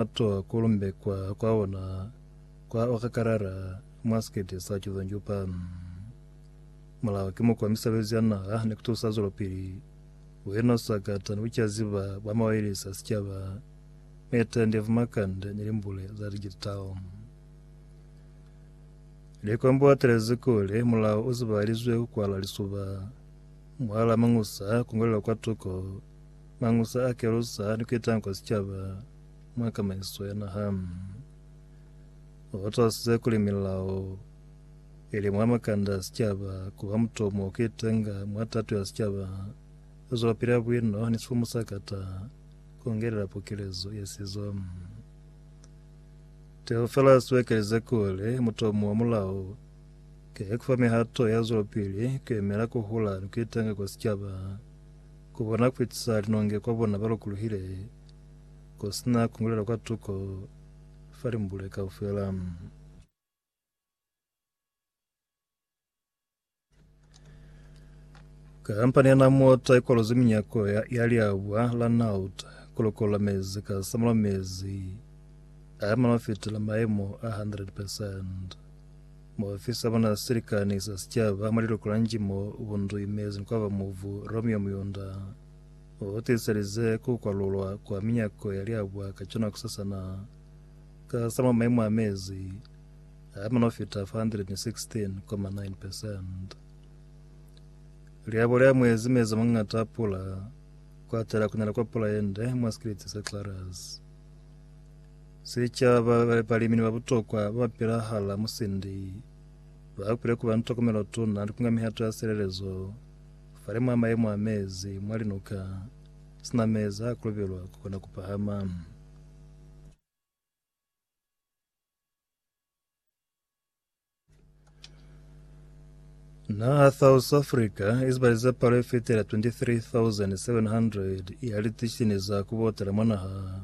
Mato a kulumbekwa kwa ona kwa okakalala mwa sikete sa Chuzanjupa. Mulao ki mukwa misebezi ya naha ni kutusa zwelopili. Buino, sakata ni bucaziba bwa mawailesi a sicaba, mitendi ya bumakande ni limbule za digital. Likombo atelezi kuli mulao u zibahalizwe ku kwala lisuba. Muhala Mangusa ku ngwalelwa kwa tuko. Mangusa a kelusa ha ni ketanga kwa sicaba mwa kamaiso ya naha. O talusize kuli milao ili mwa makanda a sicaba kuba mutomo o ketanga mwa tato ya sicaba, o zwelapila buino ni sifumu sa kata kungelela pokelezo ya sizo. Teofelasi u ekelize kuli mutomo wa mulao ke kufa mihato ya zwelopili ku emela kuhula ni ketanga kwa sicaba. ku bona kuitusa linonge kwa bona ba lokuluhile, ku si na kungulela kwa tuko fa limbule kaufela. Kampani ya Namwater ikwalozi minyako ya, ya liabwa la Nauta kulokolola mezi ka samula mezi a mana fitela maemo a 100%. Muofisa mwa silikani sa sicaba mwa liluko la Njimo ubunduimezi ni kwaba muvu Romeo Muyunda. Utiselize kukwalulwa kwa minyako yaliabwa ka cona kusasana. Ka sa mwa maimu a mezi, aama nofita 416.9%. Liabo lia mwezi mezi a mangata a pula, kuatela kunela kwa pula yende mwa sikiliti sa Clarus. Sicaba, balimi ni babutokwa babapila hala musindi bakwile kuba ni tokomelo tuna ni kunga mihato ya silelezo fale mwa mayemo a mezi mwa linuka, sina mezi a kolobelwa kukona kupahama. Naha South Africa izibaliza palo ifitela 23,700 ya litishini za kubotela mwa naha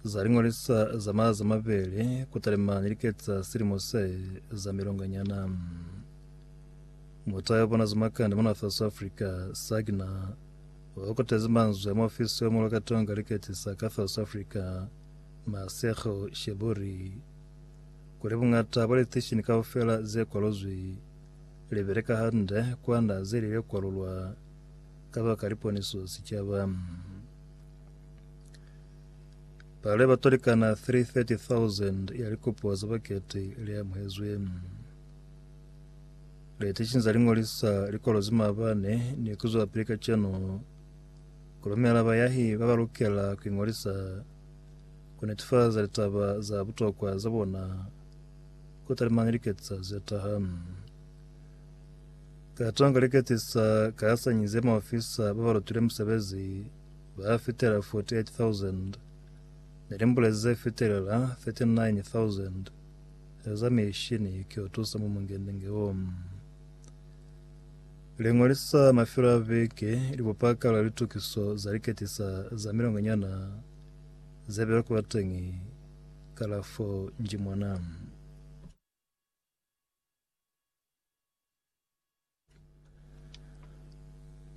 zaling'olisa za maha za mabele kutalemani liketsa silimo se za milonganyana mutayo bona zimakande mona South Africa sagina wakotezi manzwi ama ofisi wa mulwa katonga liketisa ka South Africa Masego Sheburi kuli buñata bwa liteishini kaufela ze kwaluzwi li beleka hande kwanda ze li le kwalulwa kabaka liponiso sicaba. Palo ya batu likana 330,000 ya likopo za baketi li amuhezwe. Liteishini za lingolisa likwalo ze mabane ni kuzwa pili kacenu kulumela bayahi ba ba lukela kuingolisa Ku netefaza litaba za butokwa za bona ku talimana ni liketisa ze taha. Ka tanga liketisa ka hasanyi ze maofisa ba ba lutile musebezi ba fitela 48,000 ni limbulezi ze fitelela 39,000 za mishini ki yo tusa mwa mungende-nge wo. Liñolisa mafelo a viki, libupakala, litukiso za liketisa za milongonyana, Za bela kula teñi kalafo nji mwana.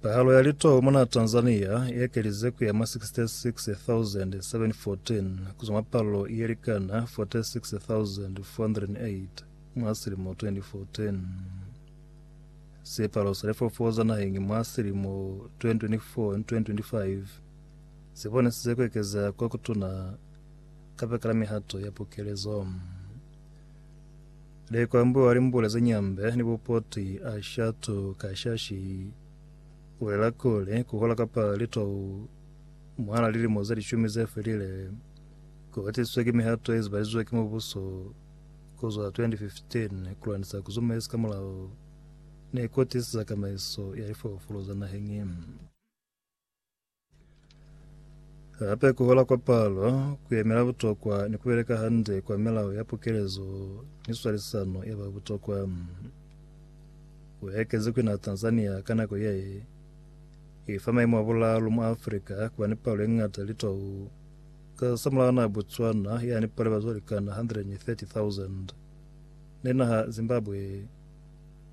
Pahalo ya litoho mona Tanzania iekelize kuya mwa 66,714 kuzwa mwa palo ielikana 46,408 mwa silimo 2014. Sipalo sa lifoofo za naheñi mwa silimo 2024 and 2025 Ze bonisize ku ekezea ko kutuna kabakala mihato ya pukelezo. Lekwambu wa limbula ze nyambe ni bupoti a shatu ka shashi ulela kuli kuhola kapa litou mwala lilimo ze lishumi ze felile ku hatisizwe ki mihato ye zibalizizwe ki mubuso kuzwa 2015 kulwanisa kuzumaiza ka mulao ni kutisiza kamaiso ya lifolofolo za naheng. Hape ku hola kwa palo, ku yemela butokwa ni ku beleka hande kwa milao ya pukelezo ni swalisano ya ba butokwa. Ku ekezi ku na Tanzania ka nako ye i fa maimu a bulaalu mwa Africa ku ba ni palo ye ñata ya litau ka samulaho naha Botswana ya ni palo ya bazwalikana 130,000 ni naha Zimbabwe